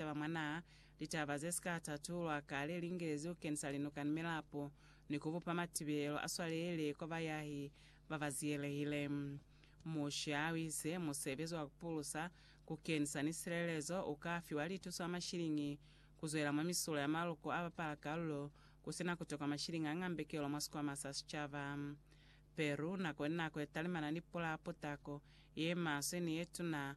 baprofeta ba mwa naa, litaba ze si ka tatulwa kale li ngelezi ku kenisa linuka ni milapo, ni ku bupa matibelo a swalelele kwa bayahi ba ba ziyelehile. Mushe a wize, Musebezi wa ku pulusa, ku kenisa ni silelezo u ka fiwa lituso a mashiliñi ku zwela mwa misulo ya maloko a bapala kalulo ku si na ku tokwa mashiliñi a ngambekelo mwa sikwama sa sicaba. Peru nako ni nako ye talimana ni pula, putako ye maswe ni ye tuna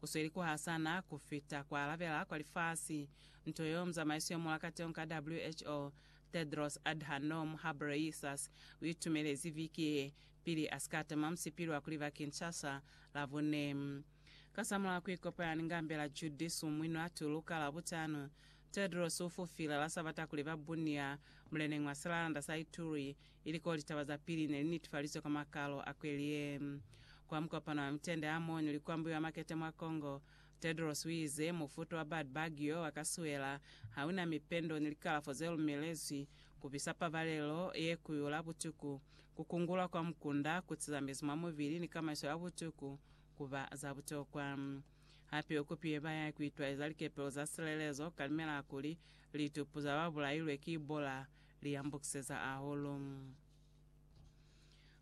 Ku sweli ku hasana ku fita ku alabela kwa lifasi. Nto yeo muzamaiso yo mula kateho ka who, Tedros Adhanom Habreyesus, u i tumelezi viki ye, pili a si ka tama musipili wa ku liba Kinshasa Labune. Kasamulaho ku ikopanya ni ngambela Judith Suminwe a tuluka Labutano, Tedros u fufile la Sabata ku liba Bunia, muleneñi wa silalanda sa Ituri, ili ko litaba za pili ne li nitufalizwe kwa makalo a kweli ye. Kwa mukopano wa mitende a mo ne li kwambuiwa makete mwa Congo, Tedros u ize, Mufutu wa Bad Bagyo wa ka suela, ha u na mipendo ni likalafo ze lumelezwi, ku pisa pabalelo ye ku yula butuku, ku kungulwa kwa mukunda, ku tiza mezi mwa mubili ni kamaiso ya butuku ku ba za butokwa. Hape u kupile ba ya ku itwaleza likepelo za silelezo, kalimela kuli litupu za ba bulailwe ki Ebola li yambukiseza ahulu.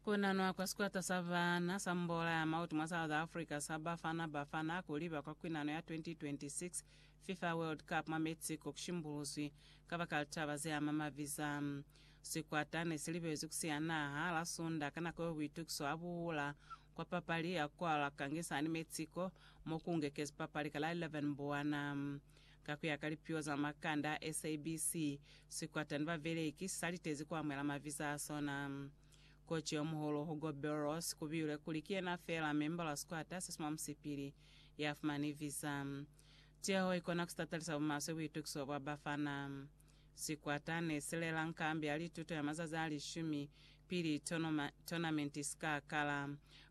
Kunanwa kwa sikwata sa baana sa mbola ya mautu mwa South Africa sa Bafana Bafana kuli ba kwa kwinano ya 2026 FIFA World Cup mwa Mexico kushimbuluzwi kabaka litaba zeama maviza. Sikwata ne si libelezwi kusiya naha la Sunda ka nako yeo buitukiso ha bu ula kwa papali ya kwalwa kangisani Mexico mo ku ngekezi papali ka la 11 Mbuwana. Ka ku ya ka lipiwa za makanda a SABC, sikwata ni babeleki sa litezi ku amuhela maviza a sona. Koci yo muhulu, Hugo Berros, ku biilwe kuli ki yena feela memba wa sikwata se suma musipili ya fumani viza. Tiyeho i kona ku sitatalisa bumaswe buitukiso bwa bafana. Sikwata ne si lela nkambi ya lituto ya mazazi a lishumi pili tonamenti i si ka kala.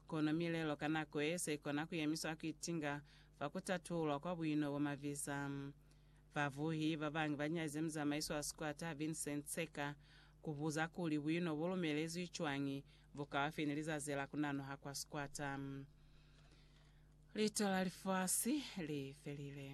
Kono milelo ka nako ye se i kona ku yemiswa ku itinga Fa ku tatulwa kwa buino bwa maviza, bavuhi ba bañwi ba nyazize muzamaiso wa sikwata, Vincent Tseka, ku buza kuli buino bu lumelezwi cwañi bu ka ba fe ni lizazi la ku nanuha kwa sikwata. Lito la lifasi li felile.